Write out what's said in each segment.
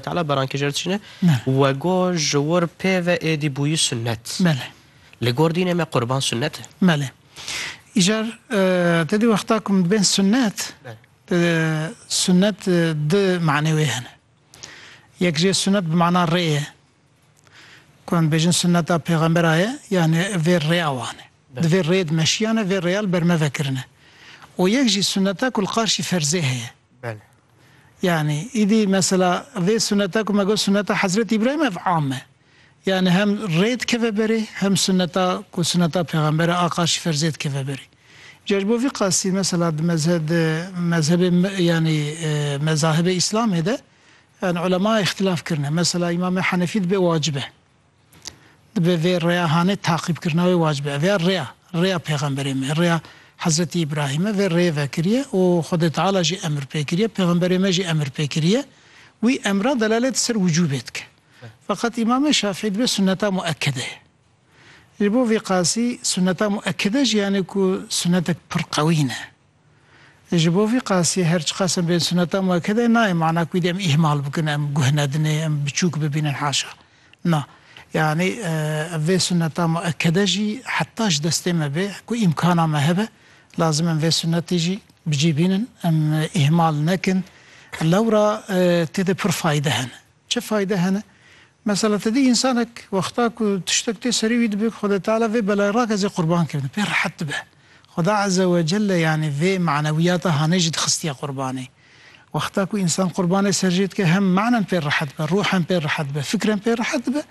Teala berankê ji çîne we got ji wir pê ve êdî bûyî sunnet. Belê. Li gor dînê me qurban sunnet e. Belê. Îcar te dî wexta ku min dibên sunnet sunnet di manê wê hene. Yek jê sunnet bi mana rê ye. Ku em bêjin sunneta pêxembera ye yani vê rêya wan e. Di vê rêd meşiyane vê rêya li ber me vekirine. Û yek jî sunneta ku li qarşî ferzê heye. Belê. Yanî îdî mesela vê suneta ku me got suneta Hezretî Îbrahîm ev am e. Yanî hem rê dikeve berê hem suneta ku suneta pêxember e Aqa Şîfer zê dikeve berê. Ca ji bo vî qasî mesela di mezhe di mezhebê yanî mezahibê Îslamê de yanî ulema îxtilaf kirine. Mesela Îmamê Henefî dibe wacib e. Dibe vê rêya hanê taqîbkirina wê wacib e. Ev ya rêya, rêya pêxemberê me, rêya Hezretî Îbrahîm e, vê rêyê vekiriye û Xwedê Teala jî emir pê kiriye, pêxemberê me jî emir pê kiriye. Wî emra delalêt ser wicûbê dike. Feqet Îmamê Şafî dibe sunneta muekkede ye. Ji bo vî qasî sunneta muekkede jî yanî ku sunnetek pir qewî ne. Ji bo vî qasî her çiqas em bên suneta muekede nayê mana ku wî dê em îhmal bikin, em guh nedinê, em biçûk bibînin haşa. Na. Yanî ev vê suneta muekede jî heta ji destê me bê ku îmkana me hebe lazim em vê sunetê jî bi cî bînin, em îhmal nekin. Lewra tê de pir fayde hene. Çi fayde hene? Mesela ti dî însanek wexta ku tiştek tê serî wî dibe ku Xwedê Teala vê belayê rak ez ê qurban kirim pê rehet dibe. Xweda Eze we Celle yanî vê manewiyata hanê jî dixistiye qurbanê. Wexta ku însan qurbanê ser jê dike hem manen pê rehet dibe, ruhen pê rehet dibe, fikren pê rehet dibe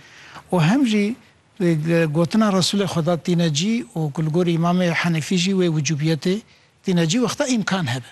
û hem jî gotina Resûlê Xweda tîne cî û ku li gorî Îmamê Henîfî jî wê wicûbiyetê tîne cî wexta îmkan hebe.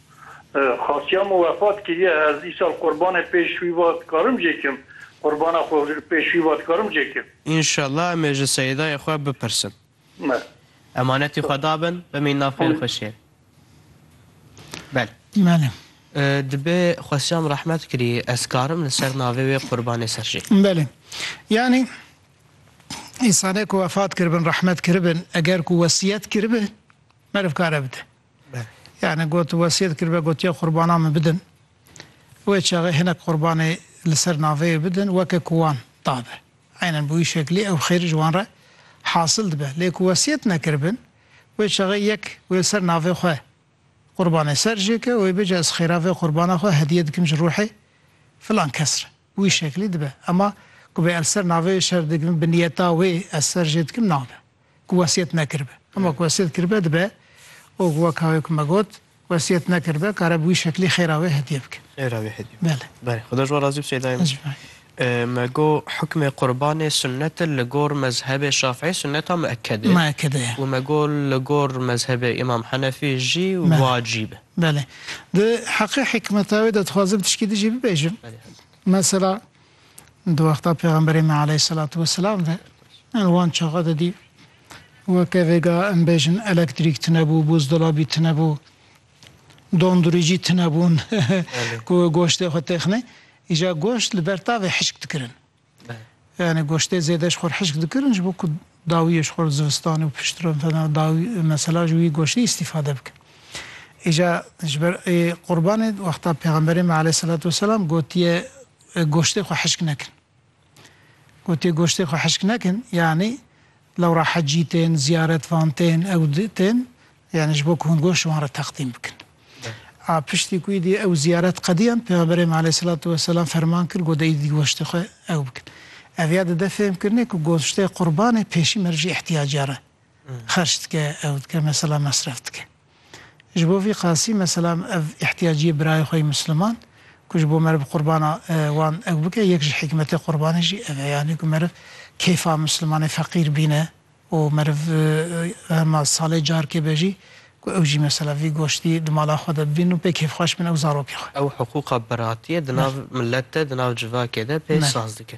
Xasiya min wefat kiriye, ez îsal qurbanê pêş wî va dikarim jê kim? Qurbana xwe pêş wî va dikarim jê kim? Înşallah em ê ji Seyîdayê xwe bipirsin. Me. Emanetî xwe dabin, bimîn nav xêr xwe şêr. Bele. Bele. Dibe xasiya min rehmet kirî, ez karim li ser navê wê qurbanê ser jê? Bele. Yanî îsanê ku wefat kiribin rehmet kiribin eger ku wesîyet kiribe meriv kare bide. Yani got wesiyet kiribe gotiye qurbanan min bidin. Wê çaxê hinek qurbanê li ser naveyê bidin weke ku wan dabe. Eynen bi wî şeklî ew xêr ji wan re hasil dibe. Lê ku wesiyet nekiribin, wê çaxê yek wê li ser navê xwe qurbanê ser jê ke û wê bêje ez xêra vê qurbana xwe hediye dikim ji ruhê filan kes re. Bi wî şeklî dibe. Ema ku bê ez li ser naveyê şer dikim bi niyeta wê ez ser jê dikim nabe. ku wesiyet nekiribe. Hema ku wesiyet kiribe dibe û ku weka wê ku me got wesiyet nekiribe kare bi wî şeklî xêra wê hediye bike. Xêra wê hediye bike. Belê. Belê. Xuda ji wan razî bi Seyda min. Me go hukmê qurbanê sunnet e li gor mezhebê şafî sunneta mueked e. Mueked e ya. Û me go li gor mezhebê îmam henefî jî wacîb e. Belê. Di heqê hikmeta wê de dixwazim tişkî dijî bibêjim. Mesela Di wexta Pêxemberê me aleyhîsselatu wesselam ve yan li wan çaxa de dî weke vêga em bêjin elektrîk tine bû, buzdolabî tine bû, dondurîcî tine bûn ku goştê xwe têxinê. Îja goşt li ber tavê hişk dikirin. Yani goştê zêde ji xwe hişk dikirin ji bo ku dawiyê ji xwe zivistanê û piştre fena dawî mesela ji wî goştî îstîfade bikin. Îja ji ber ê qurbanê wexta Pêxemberê me aleyhîsselatu wesselam gotiye Goştê xwe hişk nekin. Gotê goştê xwe hişk nekin yanî lewra hecî tên, ziyaret van tên, ew tên yanî ji bo ku hûn goşt ji wan re teqdîm bikin. A piştî ku îdî ew ziyaret qediyan Pêxemberê me aleyhîsselatu weselam ferman kir got îdî goştê xwe ew bikin. Ev ya dide fêhmkirinê ku goştê qurbanê pêşî merivjî îhtiyaciyar e. Xerç dike, ew dike mesela mesref dike. Ji bo vî qasî mesela ev îhtiyaciyê birayê xwe yê Misliman ku ji bo meriv qurbana wan ew bike yek ji hîkmetê qurbanê jî ev e yanî ku meriv kêfa Mislimanê feqîr bîne û meriv hema salê carkê be jî ku ew jî mesela vî goştî di mala xwe de bibînin û pê kêfxweş bin ew zarokê xwe. Ew hiqûqa biratiyê di nav milet de di nav civakê de pê saz dike.